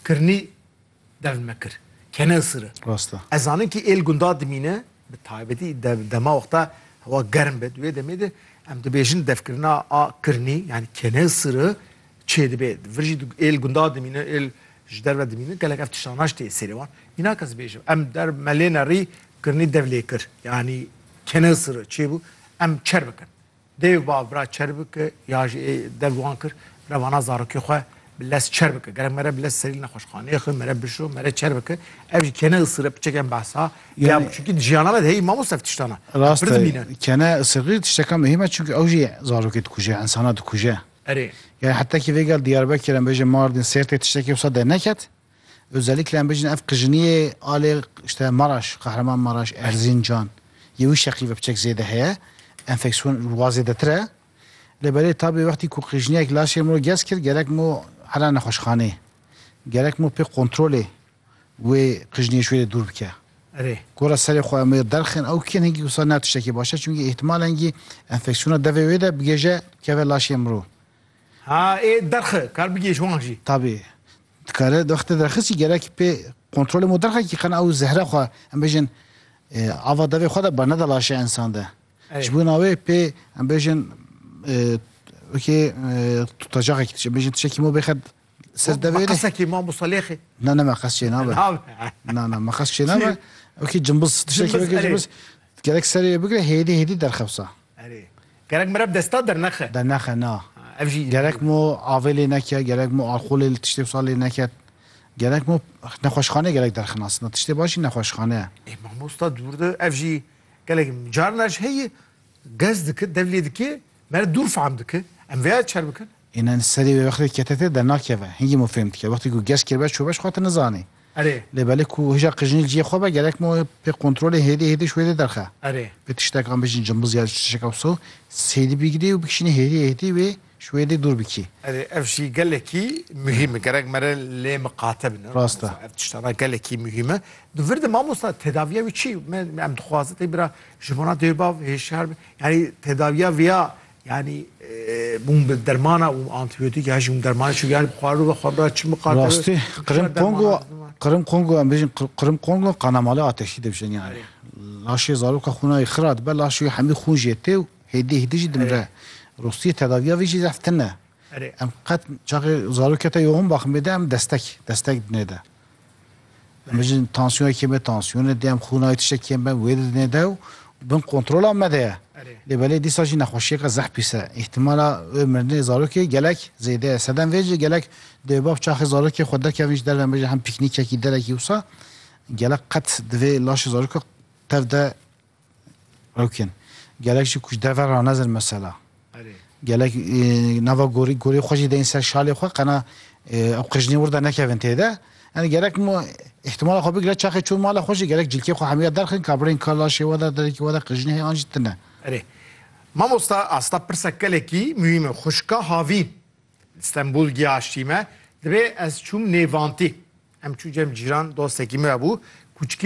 Kirnî dev me kir kene isire. Rast e. Ez zanim kî ê li gundan dimîne, bi taybetî dev dema wexta hewa germ be, di wê demê de em dibêjin devkirina a kirnî yanî kene isire çêdibe. Vir jî ê li gundan dimîne, ê ji derve dimîne gelek ev tiştan naş tê sêrê wan. Mînak ez bêjim em der me lê nerî kirnî dev lê kir yanî kene isire çêbû em çer bikin. Dêw ba vira çer bike ya jî ê dev wan kir revana zarokê xwe bi lez çer bike. Gerek mere bi lez serî nexweşxaneyê xwe mere bişo mere çer bike. Ev jî kene isire piçek em behsa ya Yani- çunkî di jiyana me de heyî mamos ev tiştan e. Em Rast pir e. dimîne. Kene isirî tişteka muhîm e çünkü ew jî zarokê dikuje, insana dikuje. Erê. Yani hetekî vêgel Diyarbekir em bêje Mardin, Sêrtê tiştekî wisa derneket. Özellikle em bêjin ev qijiniyê alê işte Maraş, Kahraman Maraş, Erzincan yê wî şeqî ve piçek zêde heye. Enfeksiyon li wa zêdetir e. Lê belê tabê wextî ku qijiniyek laşê min gez kir gerek min hera nexweşxaneyê. Gerek min pê kontrolê wê qijiniyê ji wê re dûr bike. Erê. Gora serê xwe em wê derxin ew kêm hingî wisa ne tiştekî baş e. Çimkî îhtimal hingî enfeksiyona devê wê de bigêje bikeve laşê min. Ha ê derxi kar bigê ji wan jî. Tabî. Dikare derxte derxisî gerekî pê kontrolê mo derxekî qena ew zehre xwe em bêjin ava devê xwe de bernede laşê ensan de. Ji bo na wê pê em bêjin wekî tutacaxekî dişê. Em bêjin tişekî mo bêxe ser devê. Meqesekî mamosta lêxê. Na ne meqes çê nabe. Na na meqes çê nabe. Wekî cimbiz tişekî wekî cimbiz gerek serê bigire hêdî hêdî derxewsa. Erê. Gerek mire bi desta dernexe. Dernexe na. Ev jî. Gerek mo avê lê neke, gerek mo alxolê li tiştê wisa lê neke. Gerek mo nexweşxaneyê gerek derxinasin na. Tiştê baş jî nexweşxane ye. Ê mamosta dûr de ev jî gelek carna ji heyî gez dike, dev lê dike, mere dûr fehm dike. Em vêya çer bikin. Înan serê wê wextê kete tê dernakeve. Hingî mo fêm dike. Wextê ku geş kiribe çobeş xwe ti nizanê. Erê. Lê belê ku hija qijinî ciyê xwe be gerek mo pê kontrolê hêdê hêdê ji wê dê derxe. Erê. Pê tiştekan bijîn cimbuz ya tişteka wisa sêdî bigirî û bikişînî hêdê hêdê wê ji wê dê dûr bikî. Erê ev jî gelekî muhîm e. Gerek mere lê miqate bin. Rast e. Ev tiştana gelekî muhîm e. Di vir de mamosta tedaviya wî çi? Me em dixwazin tê bira ji bona dêw bav hêşyar bin. Yanî tedaviya viya Yani bûn bi dermana û antibiyotîk ya jûn dermanê çû yani xwaru ve xwara çi miqate Rastî Qrim Kongo Qrim Kongo em bêjin Qrim Kongo qanamali ateşî dibijin yani. Laşê zaroka xûnayê xira dibe laşê wî hemî xûn jê tê û hêdî hêdî jî dimre. Rastî tedaviya vê jî zehf tune. Em qet çaxê zarokê te yoxin baxim bêde em destek destek dinê de. Em jin tansiyonekê me tansiyonê de em xûnayê tiştekî em ben wê didinê de û bin kontrola me de ye. Lê belê dîsa jî nexweşiyeke zeh pîs e. Îhtîmala wê mirinê zarokê gelek zêde ye. Sedem vê jî gelek dêwbab çaxê zarokê xwe derkevin ji derve em bêjin hem pîknîkekî derekî wisa gelek qet di vê laşê zaroka tev de Rewkên. Gelek jî ku ji derve re ranezin mesela. Gelek nava gorî gorî xwe jî deyên ser şalê xwe qena ew qijnê wirda nekevin têde. Yani gerek mu ihtimala xwe bigire çaxê çûn mala xwe jî gerek cilkê xwe hemûya derxin ka birên ka laşê we de derekî we de qijnê heye an jî tune. Erê. Mamosta asta pirsa gelekî muhîm e. Xwişka havî li Stenbol giyaştî me. Divê ez çûm nêvantî. Em çû cem cîran dostekî min hebû. Kûçikê